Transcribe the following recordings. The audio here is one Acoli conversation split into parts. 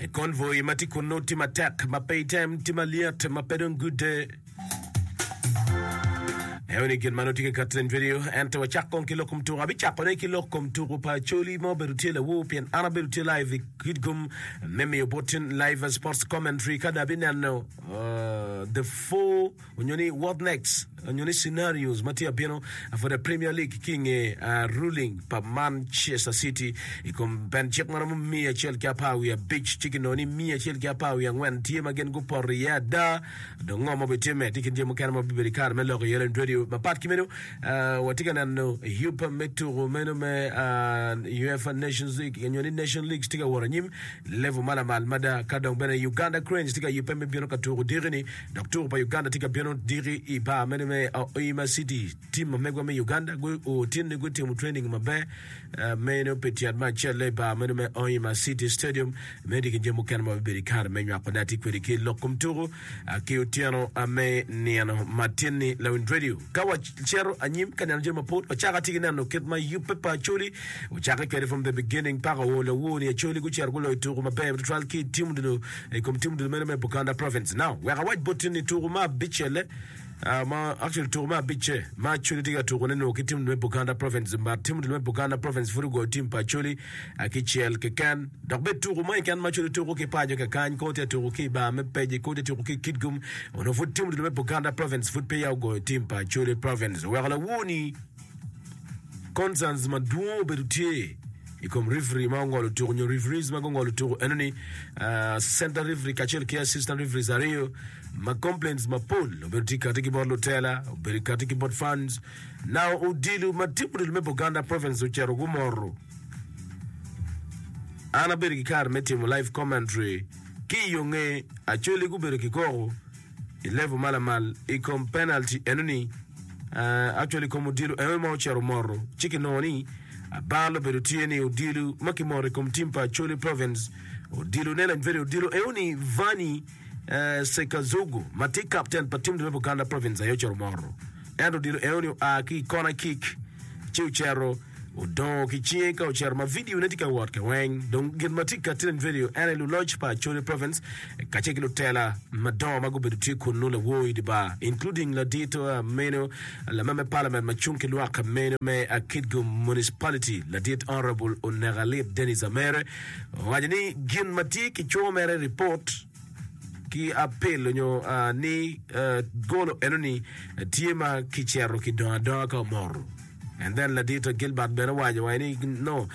I konvoi ma tye kunnu tye matek ma pe item, tye malyet ma pe dong gudde. Eyo ni gin ma nongo tye ka kati nen video, ento wacak kong ki lok kom tuku. Abicakone ki lok kom tuku pa Acholi ma obedo tye lawur pien an abedo tye live i Kitgum me miyo bot cen live sports commentary ka dong abineno uh, the four onyo ni what next onyo ni scenarios ma tye abino for the Premier League ki nge uh, ruling pa Manchester City i kom pen cik ma romo miya acel ki apar wiye abic ci kinongo ni miya acel ki apar wiye angwen tye ma gin gupoto iye ada dong ngo ma bitime tye kin jami mukene ma bibedo i kare me lok iye lend radio mapat ki meno uh, watye ka neno yupa me tuko meno me uh, UEFA Nations League onyo ni Nation League tye ka wot anyim level ma lamal mada ka dong bene Uganda Cranes tye ka yubbe me bino ka tuko diki ni Dok tuko pa Uganda tye ka bino diki i bar mene me Hoima City. Tim ma megwa me Uganda otinne gutimo training maber meno pi tyen me acel-le i bar meno me Hoima City Stadium me diki jami mukene ma bibedo i kare me nywako ne ati kwedi ki lok kom tuku ki otyeno me nino matin-ni. Lawiny Radio. Ka wacito anyim ka neno jami mapol, wacako ati ki neno kit ma yubbe pa Acholi ocakke kwede from the beginning paka o lawo-ni. Acholi gucito guloyo tuku maber tutwal ki i tim odilo I kom timo ducu meno me Buganda Province now, wek awac botti ni tuku ma abicce-le, ah, ma, actually tuku me abicce, ma Acholi tye ka tukune nongo ki timo ducu me Buganda Province, but timo ducu me Buganda Province pud ogoyo tim pa Acholi ah, kicel keken. Dok bed tuku mo keken ma Acholi tuku ki paco kakany, koo tye ka tuku ki i bar me Peje, koo tye ka tuku ki i Kitgum, onongo pud timo ducu me Buganda Province pud peya ogoyo tim pa Acholi Province. Oweko lawor-ni concerns madwong obedo tye. I kom referee ma ongolo tuku nyo referees ma gungolo tuku eno ni ah, center referee kacel ki assistant referees aryo ma complaints mapol obedo tye kati ki bot lutela obedo kati ki bot fans now odilo ma timo odilo me Buganda province ocito gumoro an abedo ki kare me timo live commentary ki yonge acoli gubedo ki koko I level ma lamal i kom penalty enoni, uh, actually i kom odilo enoni ma ocito moto, ci kinongo ni abal obedo tye ni odilo ma kimoto i kom tim pa Acholi Province, odilo ne lanyweri odilo enoni Vanyi uh, Sekazugu ma tye kapten pa tim dwe Buganda Province aye ocito moto. Ento odilo enoni oa ki i kona kick ci ocero Odongo ki cinge ka ocito ma vidio ne tye ka wot kaweng. Dong gin ma tye ka tinen i vidio ene luloc pa Acholi Province kacel ki lutela madongo ma gubedo tye kunnu lawor idi bar including ladito meno lama me Parliament ma cung ki lwak meno me Akitgo Municipality ladit Honourable Onekalit Denis Amere owaco ni gin ma tye ki cwo mere report ki apil onyo ni golo enoni tye ma kicero kidongo adonga ka omoro. And then Ladito Gilbert bene owaco wa ni no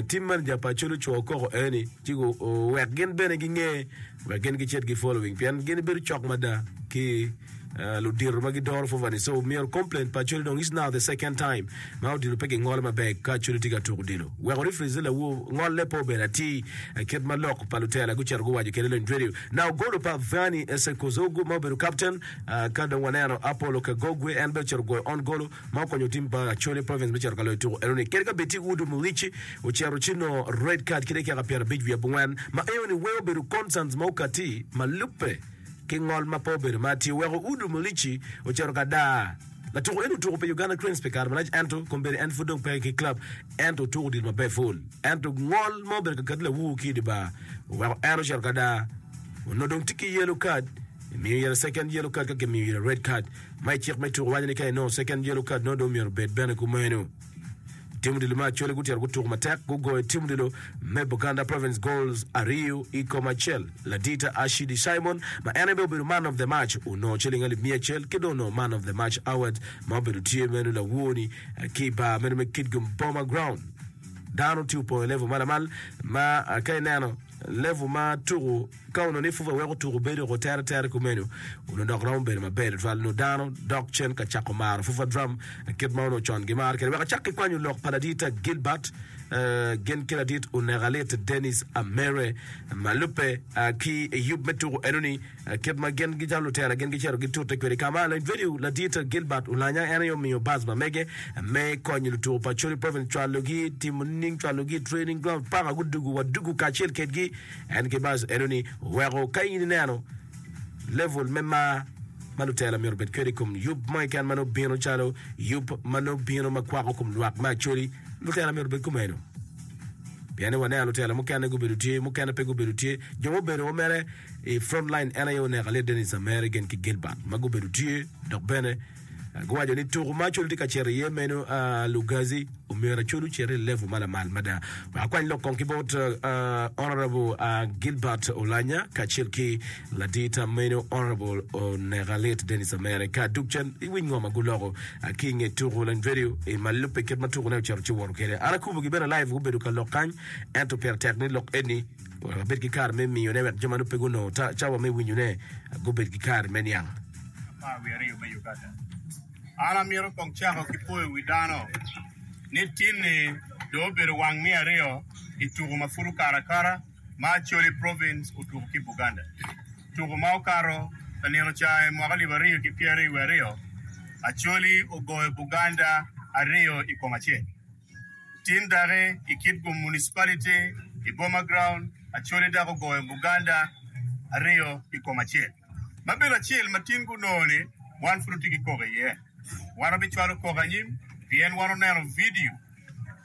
tim man ja pa culu cwo koko eni ci gu wek gin bene gi nge wek gin gi cit gi following pien gin bedo cok mada ki Uh, ludito ma gidoro fovani so myero complain pa culi dong is now the second time ma odilo pe gingolo maber ka culi tye ka tuko odilo weko reference lawu ngolle po bedo ati eh, kit ma lok pa lutela gucito guwaco kede lony radio na ogolo pa Vani Esekozogu ma obedo captain uh, ka dong waneno Apollo Kagogwe en be ocito goyo on golo ma okonyo tim pa Acholi Province me cito ka loyo tuku eno ni kadi ka bed tye ki Wood Omurici ocito ci nongo red card ki dakika pyer abic wiye abungwen ma eno ni weko bedo concerns ma okati ma lubbe ki ngol ma pe obedo ma tye oweko Wood Omurici ocito ka daa la tuku eno otuku pi Uganda Cranes pi kare malac ento kombeddi en pud dong peke ki club ento otuku odilo maber full ento ngol ma obedo ka kati lawur ki idibar oweko en ocito ka daa onongo dong tye ki yellow card miyo ire second yellow card ka kimiyo ire red card ma i cik me tuko waco ni ka inongo second yellow card nongo dong myero obed bene kumeno. Tim odilo me Acholi gutito gutuko matek gugoyo tim odilo me Buganda Province goals aryo i kom acel. Ladita Ashidi Simon ma en aye bene obedo man of the match onongo ciling alip miya acel ki dong onongo man of the match award ma obedo tye meno lawoni ki i bar meno me Kitgum Boma Ground. Dano tye opongo i level ma lamal ma ka ineno level ma tuko Ka onongo ni pwopwa weko tuko bedo woko tere tere kumeno, onongo dok romo bedo maber tutwal. Nongo dano dok cen ka cako maro pwopwa drum kit ma onongo con gimaro kwede. Wek acak ki kwanyo lok pa laditta Gilbert, gin ki ladit Oneka Lit, Dennis Amere, ma lubbe ki i yub me tuko enoni, kit ma gin gicalo lutela gin gicito gitute kwede. Ka ma laditta Ladit Gilbert olanya, en aye omiyo bus ma mege me konyo lutuko pa Acholi Province cwalogi timo nining, cwalogi i training ground paka gudugu wa dugu kacel kwedgi. En ki bas eno ni weko ka in ineno level me mar ma lutela myero obed kwede i kom yub mo keken ma nongo bino calo yub ma nongo bino ma kwako kom lwak me Acholi, lutela myero obed kumeno. Pien ni waneno lutela mukene gubedo tye, mukene pe gubedo tye. Jo mubedo wa mere i front line en aye oneko aye Dennis Amere gen ki Gilbert ma gubedo tye dok bene Guwaco ni tuku ma Acolu tye ka cito iye meno, Lugazi, omyero Acolu ocit i level ma lamal mada. Akwany lok kong ki bot Honourable Gilbert Olanya kacel ki ladii tam meno Honourable Onekalit Dennis Amere ka duk cen i winy ngo ma guloko ki nge tuku line video i ma lubbe kit ma tuku ne ocito ci woto kede. An akubo gi bene live gubedo ka lok kany ento pire tek ni lok eni wek abed ki kare me miyo ne wek jo ma nongo pe gunongo cawa me winyo ne gubed ki kare me niang. Apar wiye aryo me Uganda. An amito kong cako ki poyo wi dano ni tinni dong obedo wang me aryo i tuku ma pud okato akata ma Acholi Province otuku ki Buganda. Tuku ma okato ka nino ca i mwaka alip aryo ki pyeraryo wiye aryo, Acholi ogoyo Buganda aryo i kom acel. Tin daki i Kitgum Municipality i Boma Ground, Acholi daki ogoyo Buganda aryo i kom acel. Labelo acel ma tin gunongo ni wan pud watye ki koko iye. Wan wabicwalo koko anyim pien wan oneno vidio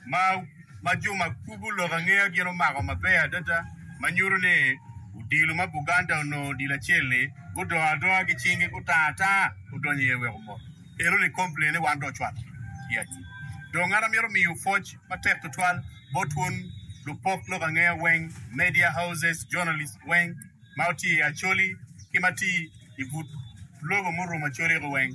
ma jo ma kubo lok angeya gin omako maber adada ma nyuto ni odilo ma Buganda onongo odilo acel-li gudongo adonga ki cingi gutango atanga odonyo iye wek omot. Enoni komplene wan dong ocwalo tye anyim. Dong an amito miyo pwoc matek tutwal bot wun lupok lok angeya weng, media houses, journalists weng, ma otye i Acholi ki ma tye i but lobo murumo Acholi-gu weng.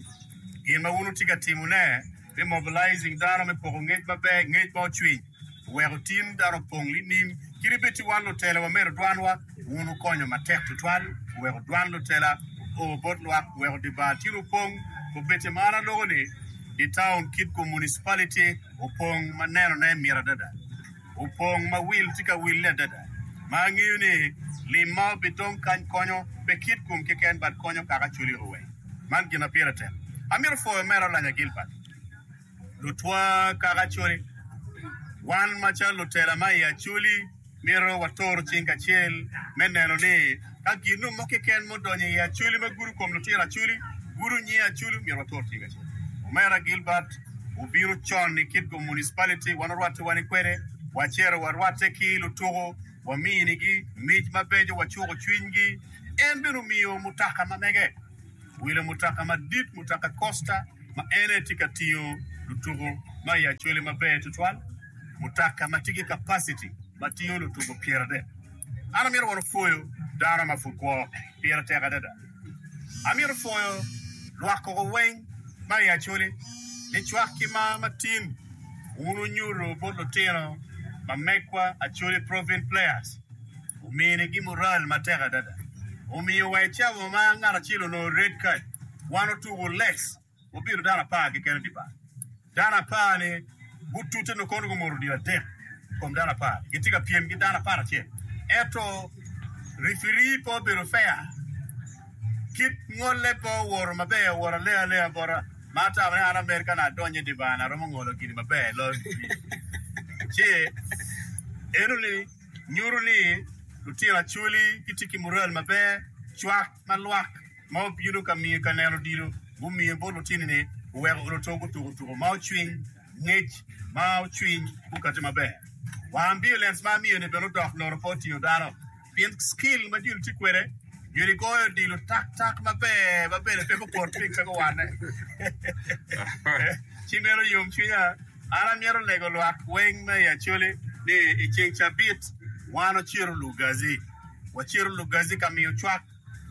Gin ma wun wutye ka timone me mobilizing dano me poko ngec maber, ngec ma ocwiny, oweko tim dano opong nining? Kit ibed ci wan lutela wamedo dwanwa, wun wukonyo matek tutwal, wuweko dwan lutela opo bot lwak, wuweko dye bar tyen opong, obed-ti ma an aloko ni dye taun kit-gu, municipality, opong ma nenone mit adada. opong ma wil tye ka wille adada, ma angeyo ni lim ma obitong kany konyo pe kit kom keken but konyo kaka cwali ruwe. Man gin ma pire tek. Amito pwoyo mere olanya Gilbert. Lutwa kaka cwali, wan macalo lutela ma i Acholi mito watoro cing kacel me neno ni Ka ginnu mo keken mudonyo i acoli ma gudo kom lutira acoli, gudo nyi acoli, myero watur cing acel. Omera Gilbert obino con i Kitgum Municipality, wan orwattiwa ni kwede, wacero warwatte ki lutuku, waminigi mic mabeco, wacuku cwinygi. En bene omiyo mutoka ma mege, owilo mutoka madit, mutoka Costa, ma en aye tye ka tingo lutuku ma i acoli maber tutwal, mutoka ma tye ki capacity ma tingo lutuku pyeradek. An amito wano pwoyo dano ma pud kwo pire tek adada. Amito pwoyo lwak koko weng ma i Acholi ni cwak ki mar ma tin wun wunyuto bot lutino ma megwa Acholi Provin Players omini gi mural ma tek adada. Omiyo wa i camo ma ngat acel onongo red card, wan otuku less. Gubido dano apar keken i dye bar. Dano apar-ni gutute nongo kono gumoto odilo adek i kom dano apar-ri. Gitye ka pyem ki dano apar acel. Ento rifiri pe obedo feya. Kit ngolle pe owoto maber, owoto alea alea bota. Ma atamo ni an amed ka naka adonyo i dye bar-ni aromo ngolo gini maber loyo rifiri. Ci enoni nyuto ni lutino Acholi gitye ki mural maber, cwak ma lwak. ma obino ka miyo ka neno odilo, gumiyo bot lutinone, guweko luto gutuko tuko ma ocwiny, ngec ma ocwiny gukate maber. Wang violence ma amiyo-ni bene odok loro pe otingo dano, pien skill ma joni tye kwede joni goyo odilo tak tak maber ma bene pe gukot piny pe guwanne. Ci meno yom cwinya, an amyero lego lwak weng me i Acholi ni i ceng cabit wan ociro Lugazi, waciro Lugazi ka miyo cwak.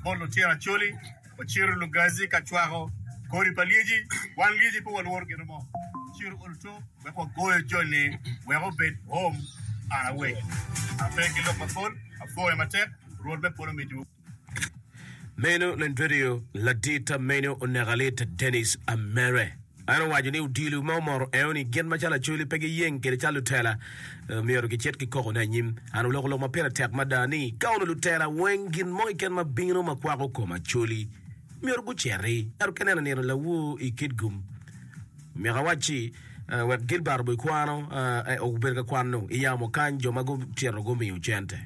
bot lutira Acholi, wacito Lugazi ka cwako kodi pa lyeci. Wan lyeci pe walworo gin mo, wacito Olto wek wagoyo joni wek obed om. An awec, an ape ki lok mapol, agoyo matek, Rwot me polo mitiwu. Meno lend redio ladit amenyo oneka lit Dennis Amere. En owaco ni odilo ma omoto eo ni gin macalo Acholi pe giyeng kede calo lutela myero gicit ki koko ne anyim. An oloko lok ma pire tek mada ni ka onu lutela weng gin mo keken ma bino ma kwako kom Acholi myero guceti ento ka ineno nino lawu i Kitgum myeko awacci wek Gilbert obo ikwano, obedo ka kwano i yamo kany jo ma gucito gumiyo cente.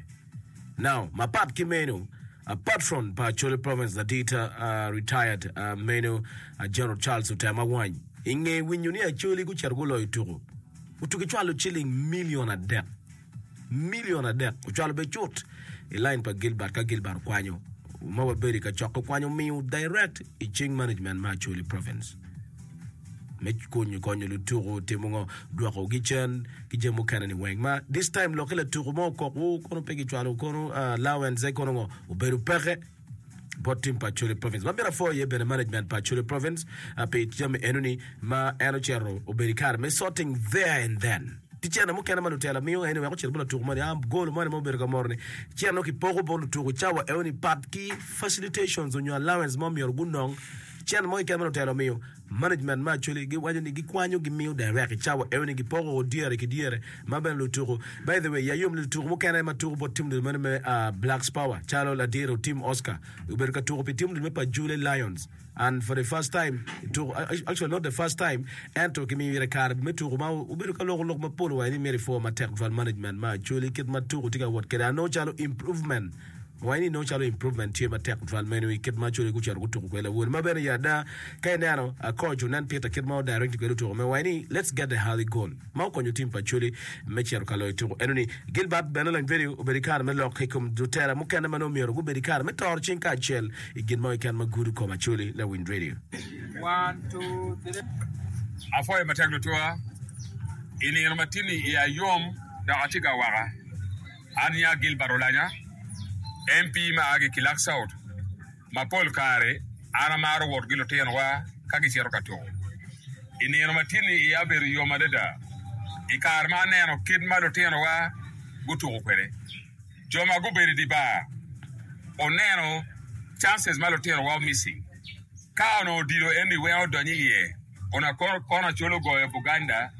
Now, mapat ki meno, a patron pa Acholi Province Ladita a retired a meno a General Charles Otem Awany i nge winyo ni Acholi gucito guloyo tuku, otuki cwalo ciling million adek. Million adek ocwalo be cut i line pa Gilbert ka Gilbert okwanyo ma wabedo i kacok okwanyo miyo direct i cing management ma Acholi Province. me konyo konyo lutuku timo ngo dwokogi cen ki jami mukene ni weng ma this time lokke latuku mo okokwu kono pe gicwalo kono ah, allowance kono ngo obedo peke bot tim pa Acholi province ma myero afo iye bene management pa Acholi province ah, pi jami eno ni ma en ocito obedo i kare me sorting there and then ti cene mukene ma lutela miyo eni wek ocit bot latuku moni ah, golo moni ma obedo ka moro ni cene kipoko bot lutuku cawa eno ni pat ki facilitations onyo allowance mo myero gunong Cen mo i kema lutelo miyo management me Acholi giwaco ni gikwanyo gimiyo direct i cawa eno ni gipoko o dyere ki dyere ma bene lutuku by the way ya yom ni lutuku mukene ma tuku bot tim dul meno me Blacks Power calo ladiro tim Oscar obedo ka tuku pi tim dul me Pajule Lions and for the first time tuku actually not the first time ento kimiyo ire kare me tuku ma obedo ka loko lok mapol wa ni myero i for matek twal management me Acholi kit ma tuku tye ka wot kwede ano calo improvement Wange ni nongo calo improvement tye matek tutwal meno i kit ma code gucito gutuko kwede lawol ma bene ya ada ka ineno coach onen Peter kit ma odirect kwede otuko me wange ni let's get the early goal ma okonyo tim pa code me cito ka loyo tuko eno ni Gilbert bene leng pedi obedo kare me lok i kom lutela mukene ma nongo myero gubedo kare me toro cing kacel i gin mo keken ma gudo koma code na Wind Radio. Apwoyo matek tutwal i nino matini iya yom dok atye ka waka. An i a Gilbert Olanya, MP ma a ki Kilak South. Ma pol kare an amaro wot ki lutinowa ka gicito ka tuko. I nino ma tye-ni iya obedo yom adada i kare ma aneno kit ma lutinowa gutuko kwede. Jo ma gubedo i dye bar oneno chances ma lutinowa omissing. Ka onongo odilo eni weng odonyo iye. kun akoro kono acol ogoyo Buganda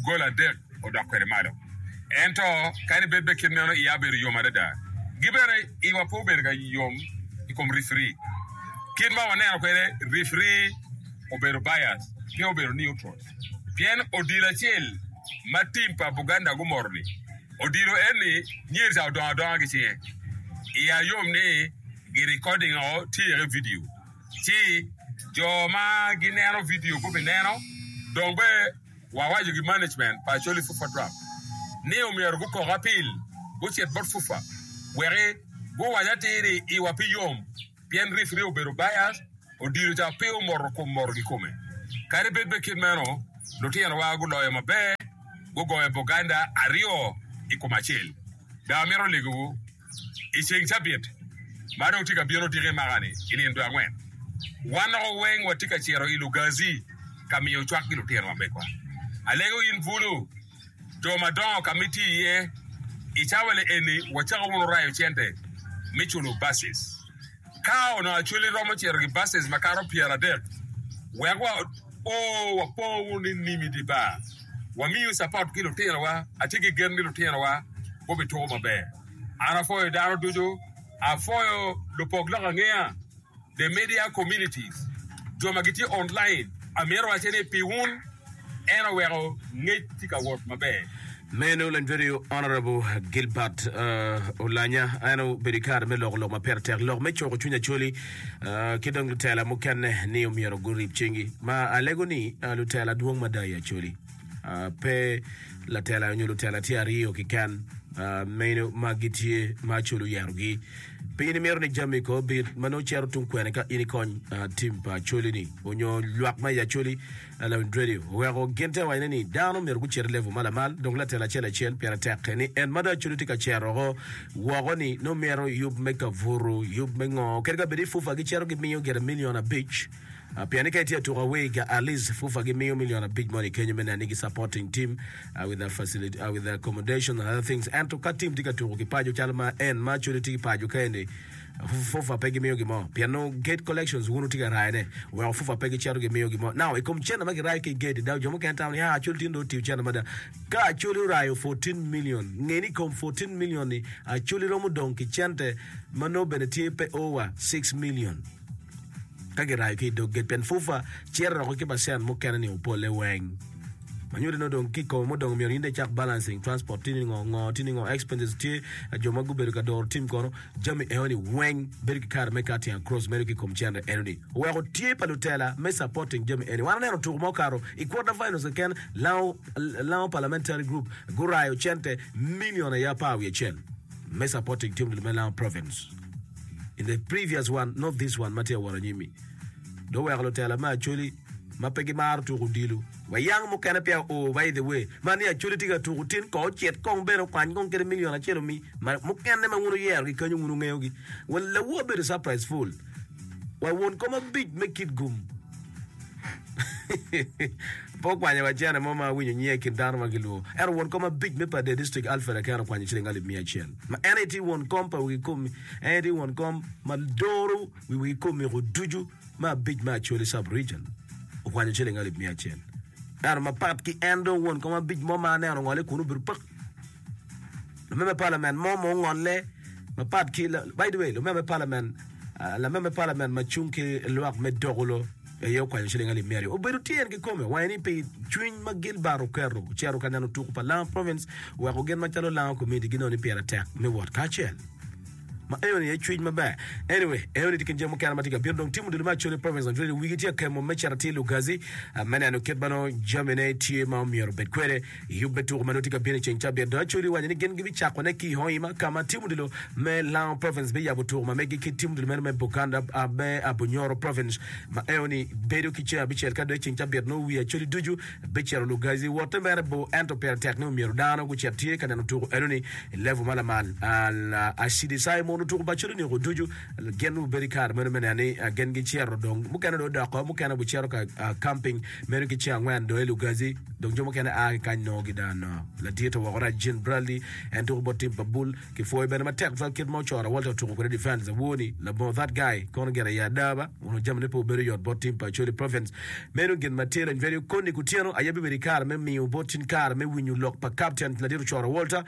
gol adek odok kwede malo. Ento kadi bed bene kit meno, iya obedo yom adada. Gi bene iwa pe obedo ka yom i kom rifiri. Kit ma waneno kwede, rifiri obedo bias, pe obedo neutral. Pien odilo acel ma tim pa Buganda gumoto-ni, odilo eni nyer ca odongo adonga ki cinge. Iya yom ni girikodinngo tye iye ki vidio. Ci jo ma gineno vidio gubineno, dong be wawaco ki management pa Acholi Fufa Drum ni omyero gukok apil gucit bot Fufa weki guwac atir ni iwa pe yom pien referee obedo biased, odilo ca pe omoto kom moto kikome. Kadi bed pe kit meno, lutinowa guloyo maber, gugoyo Buganda aryo i kom acel. Be amito legowu. I ceng cabit ma dong tye ka bino odike maka-ni i nino dwe angwen, wan doko weng watye ka cito i Lugazi ka miyo cwak ki lutino ma megwa. Alego in bulu jo madongo ka ma itye iye. I cawa-ni eni wacako wunu rayo cente me culo basis. Ka onongo Acholi romo cito ki basis makato pyeradek, wek wa o wapo nining i dye bar? Wamiyo capot ki lutinowa? Atye ki gen ni lutinowa gubituko maber. An apwoyo dano ducu. Apwoyo lupok lok angeya, the media communities, jo ma gitye online. Amito wacce ni pi wun. En oweko ngec tye ka wot maber. Meno Lanywedeyo Honourable Gilbert Olanya en obedo i kare me loko lok ma pire tek, lok me cuko cwiny Acholi ki dong lutela mukene ni omyero gurib cinggi ma alego ni lutela dwong mada i Acholi pe latela nyo lutela tye aryo kiken meno ma gitye ma Acholi oyerogi. Pe in imito ni jami ko obit ma nongo cito tung kwene ka in ikony tim pa Acholi ni onyo lwak ma i Acholi Ellen Drady oweko gin te wacone ni dano myero gucit i level ma lamal dok latin acel acel pire tekke ni en ma dong acudo tye ka cerroko woko-ni nongo mito yub me kavuru, yub me ngo kadi ka bed i FUFA gicito gimiyo gire milion abic pien ni ka itye atuka awega at least FUFA gimiyo milion abic moni kenyo me neno ni gi supporting team with the facility, with the accommodation and other things ento ka team tye ka tuku ki paco calo ma en ma acudo tye ki paco ka eni Fufa pe gimiyo gin mo pien nongo gate collections wun wutye ka rayone weko fufa pe gicito gimiyo gin mo. Now i kom cene ma girayo ki i gate dok jo mukene tamo ni ah Acholi tye dong otiyo cene mada. Ka Acholi orayo 14 million, nge ni i kom 14 million ni Acholi romo dong ki cente ma nongo bene tye pe over 6 million ka girayo ki i dog gate pien fufa ciro roko ki percent mukene ni opolle weng. Ma nyuto ni nongo dong ki i kome mudong myero in dong icak balancing transport tye ni ngo, ngo tye ni ngo, expenses tye, jo ma gubedo ka doro tim kono. Jami enoni weng bedo ki kare me cutting across medo ki kom cendre enoni oweko tye pa lutela me supporting jami eni. Wan aneno tuku ma okato i quarter finals keken lango lango parliamentary group gurayo cente million aye apar wiye acel me supporting team me lango province in the previous one not this one ma tye awot anyimi dong oweko lutela me Acholi ma pe gimaro tuko odilo. Wa yang mukene peya o by the way ma ni acholi tye ka tuko tin kong ocit kong bene okwany kong kede million acel omi ma mukene ma wun wuyero gi kenyo wun wungeyo gi wa lawu abedo surprise full wa won kom abic me kit gum pe okwanyo wa cene mo ma awinyo nyinge ikin dano ma gilwor ento won kom abic me Padee District Alfred Aker okwanyo ciling alip miya acel ma en aye tye won kom pa wigi komi en aye tye won kom ma doro wi wigi komiko ducu me abic me Acholi Sub-Region okwanyo ciling alip miya acel. Ento mapat ki en dong won kom abic mo ma aneno ongole kunu obedo pak. Lamem me palamen mo ma ongolle mapat ki by the way lamem me palamen ah, lamem me palamen ma cung ki lwak me Dogulo eye okwanyo ciling alip miya aryo. Obedo tyen ki kome wange ni pi cwiny ma Gilbert oketo ocito ka neno tuku pa Langa Province weko gin macalo Langa Community gineno ni pire tek me wot kacel. Ma eoni aye cwiny maber. Anyway, eoni tye kin jami mukene ma tye ka bino. Dong tim odilo me Acholi Province on Tuesday. Wigi tye ka kemo me cito atir Lugazi me neno kit ma nongo jamine tye ma omyero obed kwede i yubbe tuko ma nongo tye ka bino i ceng cabit. Dong Acholi owaco ni gin gibicakone ki i Hoima ka ma tim odilo me Lango Province biyabo tuko ma megi ki tim odilo meno me Buganda me Abunyoro Province. Ma eoni bedo ki ceng abicel ka dok i ceng cabit nongo wi Acholi ducu Bicito Lugazi wote mere bor ento pire tek ni omyero dano gucit tye ka neno tuko eno-ni i level ma lamal. Al-Ashidi sayo mono tuko pa code-ni oko ducu gin obedo i kare meno me neno ni gin gicito dong mukene dong odoko mukene gucito ka camping meno ki ceng angwen dong i Lugazi dong jo mukene a ki kany nongo gida. Ladite woko Rajin Bradley en tuko bot tim pa Bull Kipwoyo bene matek cwal kit ma Ocora Walter otuko kwede defence. Awor ni labongo that guy kono gin aye adaba, onongo jamine pe obedo yot bot team pa Acholi Province. Meno gin ma tye dong very okoni kutyeno aye bibedo ikare me miyo bot in kare me winyo lok pa captain ladit Ocora Walter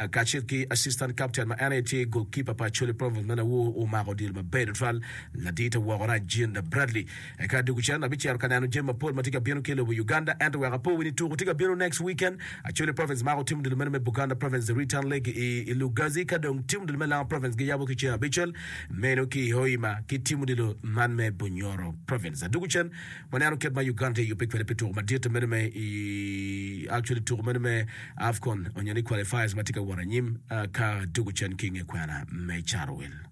kacel ki assistant captain ma en aye tye goalkeeper pa Acholi Province. Meno awor omako odilo maber tutwal ladit awoko rac Jean Bradley. Eka dog cen abicito ka neno jami mapol matye ka bino ki ilobo Uganda ento wek apowi ni tuku tye ka bino next weekend Acholi province mako timo dul meno me Buganda province the return leg i i Lugazi ka dong timo dul me Lango province giyabo ki ceng abicel meno ki i Hoima ki timo dilo man me Bunyoro province aduku cen waneno kit ma Uganda tye yubbe kwede pi tuku madite meno me i Actually tuku meno me Afcon onyo ni qualifiers matye ka wot anyim ka duku cen ki nge kwena me Carowil.